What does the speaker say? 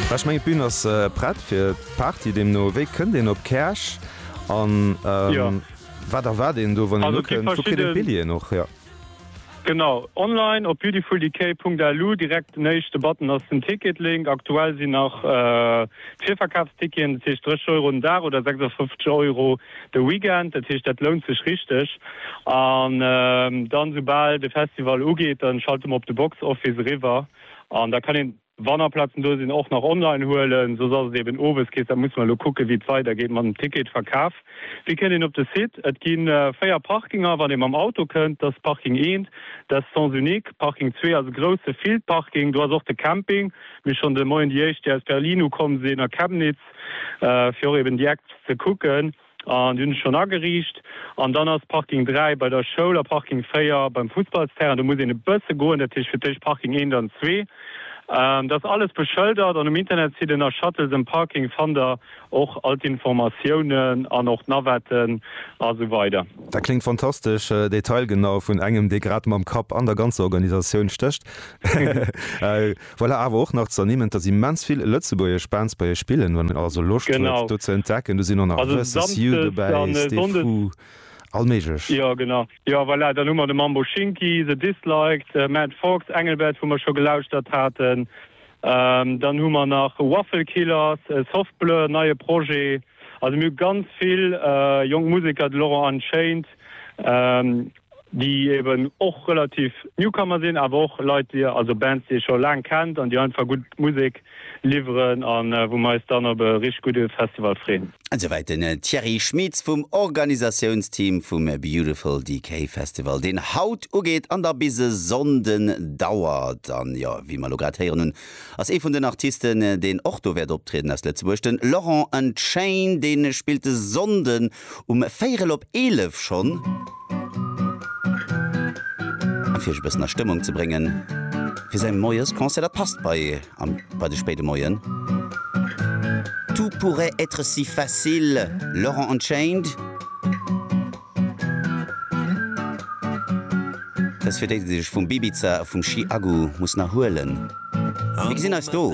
Well ech mengen d'Bün ass prett fir d'Party, deemno wéi kënnt een op Käerch an wat erwaart een do wann een ukënnt? Wou kritt een d'Billjeeën och hier? Genau, online op beautifuldecay.lu, direkt den éischte Button ass den Ticket-Link. Aktuell sinn nach d'Virverkafsticketen, dat heescht 30 Euro den Dag oder 56 Euro de Weekend, dat heescht dat lount sech richteg. An dann soubal de Festival ugeet, da schalte mer op de Box Office eriwwer. An da kann een, wann nach Plazen do sinn, och nach online huelen. Soss ass et eben owes kees. Da musse mer elo kucken, wéi et weidergeet mat dem Ticketverkaf. Wéi kënnt een op de Site? Et gi véier Parkinger, wann ee mam Auto kënnt. Dat ass Parking eent, dat ass Sens unique. Parking zwee ass e grousse Fieldparking. Do ass och de Camping. Mir hu schonn de Moien déi éischt, déi aus Berlin ukomm sinn, a Chemnitz, fir och eben déi Acts ze kucken. An déi hunn ech schonn ageriicht. An dann ass Parking 3 bei der Schoul a Parking 4 beim Fussballsterrain. Do muss een e bësse goen, dat heescht fir d'éischt Parking 1, dann 2. Dat ass alles beschëldert an um Internetsite nach Shuttles and Parking fannt der och all d'Informatiounen an och d'Navetten a sou weider. Dat kléngt fantastesch detailgenau, vun engem, dee grad mam Kapp an der ganzer Organisatioun stécht. Voilà, awer och nach z'ernimmen, dass immens vill lëtzebuergesch Bands bei iech spillen. Wann een also Loscht huet do ze entdecken, do sinn och nach Versus You dobäi, Stefou, all méiglech. Jo genau, jo voilà, dann hu mer de Mambo Shinki, The Disliked, Matt Fox, Engelbert, wou mer scho gelauschtert haten. Dann hu mer nach Waffle Killers, Soft Blur, neie Projet. Also mir hu ganz vill jonk Museker, de Laurent Unchained. déi eben och relativ Newcomer sinn, awer och Leit, déi, also Bands, déi ee scho laang kennt an déi einfach gutt Musek liwweren a wou mer eis dann op e richteg gudde Festival freen. Esouwäit den Thierry Schmitz vum Organisatiounsteam vum Beautiful Decay Festival, deen haut ugeet an da bis e Sonnden dauert. An jo, wéi mer elo grad héieren hunn, ass ee vun den Artisten, deen och do wäert optrieden, aus Lëtzebuerg, de Laurent Unchained, dee spillt e Sonnden Um véirel op eelef schonn. A fir iech e bëssen a Stëmmung ze bréngen fir säi Moiesconcert, dat passt bei am bei de spéide Moien, Tout pourrait être si facile, Laurent Unchained. Dat ass fir déi, déi sech vum Bibiza a vum Chiagu mussen erhuelen. Mir gesinn eis do!